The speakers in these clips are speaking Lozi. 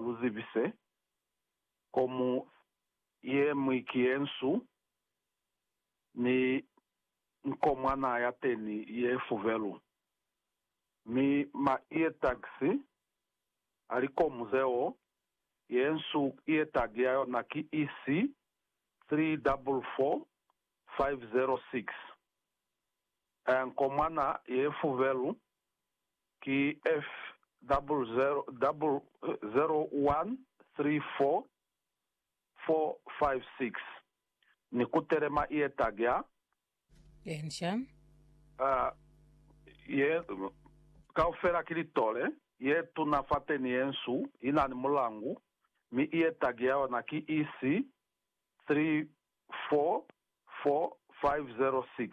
lu zibise, Kgomu ye ñwi ki ye nsu, mi nkomwana ya teni ye fubelu. Mi ma iye tagisi, a li kgomu zeo, ye nsu ye tagi ya yona ki EC 344506. Nkomwana ye fubelu ki F0013446 ni ku telema ye tagya, Ensha. A, ye kaufela ki litole, ye tuna fateni ye nsu, ina ni mulangu, mi ye tagya yona ki EC344506.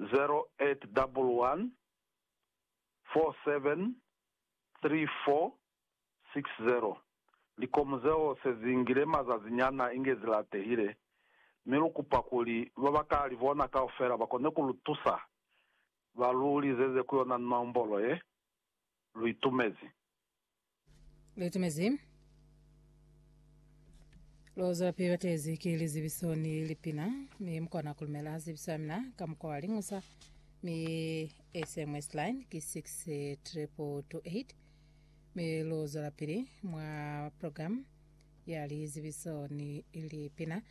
0811473460. Likomu zeo se zi ngile mazazi nyana inge zi latehile, mi lu kupa kuli ba ba ka li bona kaufela ba kone ku lu tusa. Ba lu lizeze ku yona nombolo ye lu itumezi. Lutumezi. Lozwa pili batezi ki lizibiso ni lipina mi mukona kulumela zibiso ya mina ka mukwa wa lingusa mi SMS line ki 62228 mi lozwa pili mwa program ya lizibiso ni lipina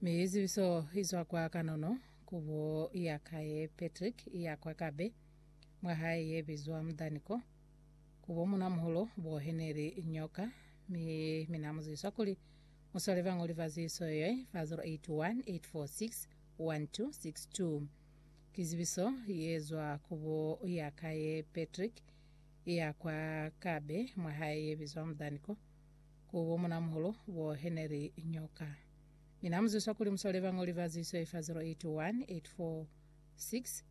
mi zibiso izwa kwa kanono kubo ya kaye Patrick ya kwa Kabe mwa hae ye bizwa Mudaniko ku bo munamuholo bo heneli nyoka, mi mina mu zwiswa kuli mu swale bañoli ba ziso ye, fa 0818461262. Ki zibiso ye zwa ku bo ya ka ye Patrick ya kwa Kabe mwa hae ye bizwa Mudani ko, ku bo munamuholo bo heneli nyoka, mina mu zwiswa kuli mu swale bañoli ba ziso ye fa 0818461262.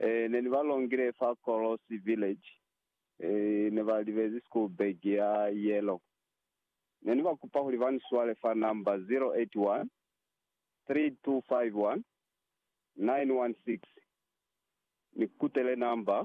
Eh, ne ni ba longile fa Kolosi Village. Eh, ne ba libezi school bag ya yellow. Ne ni ba kupa kuli ba ni swale fa number 081 3251 916. Ni kutele number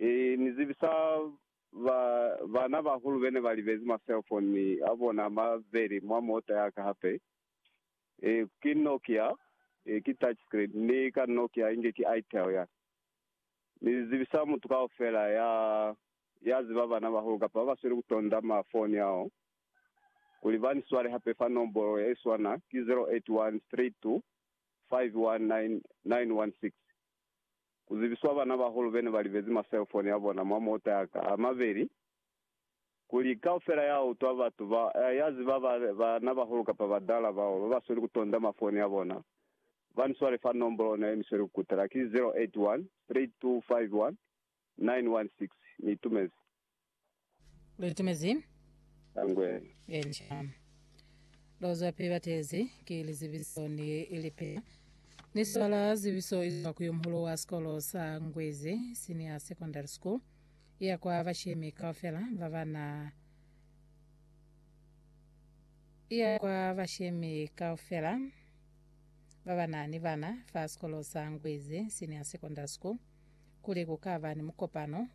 Ee, ni zibi sa ba, bana ba hulu bene ba libezi ma cellphone a bona a mabeli mwa mota ya ka hape. Ee, ki Nokia, ee, ki touch screen, ni ka Nokia inge ki Itel ya. Ni zibi sa mutu kaufela ya, ya ziba bana ba hulu kapa ba ba sweli ku tonda ma foni ao, kuli ba ni swale hape fa nombolo ye swana, ki 0813251996. ku zibiswa banabahulu bene ba libezi maselfoni a bona mwa mota a ka a mabeli, kuli kaufela ya utwa batu ba, ya ziba ba, banabahulu kapa badala bao ba ba sweli ku tonda mafoni a bona, ba ni swale fa nombolo ona ye ni sweli ku kutela, ki 0813251212. 916 ni itumezi. Lu itumezi? Angwe. Encia. Lu zwa pili batezi ki lizibiso ni lipina. Ni swala zibiso izwa ku yomuhulu wa sikolo sa Ngwezi Senior Secondary School, iya kwa bashemi kaufela ba ba na iya kwa bashemi kaufela ba ba na ni bana fa sikolo sa Ngwezi Senior Secondary School kuli ku ka ba ni mukopano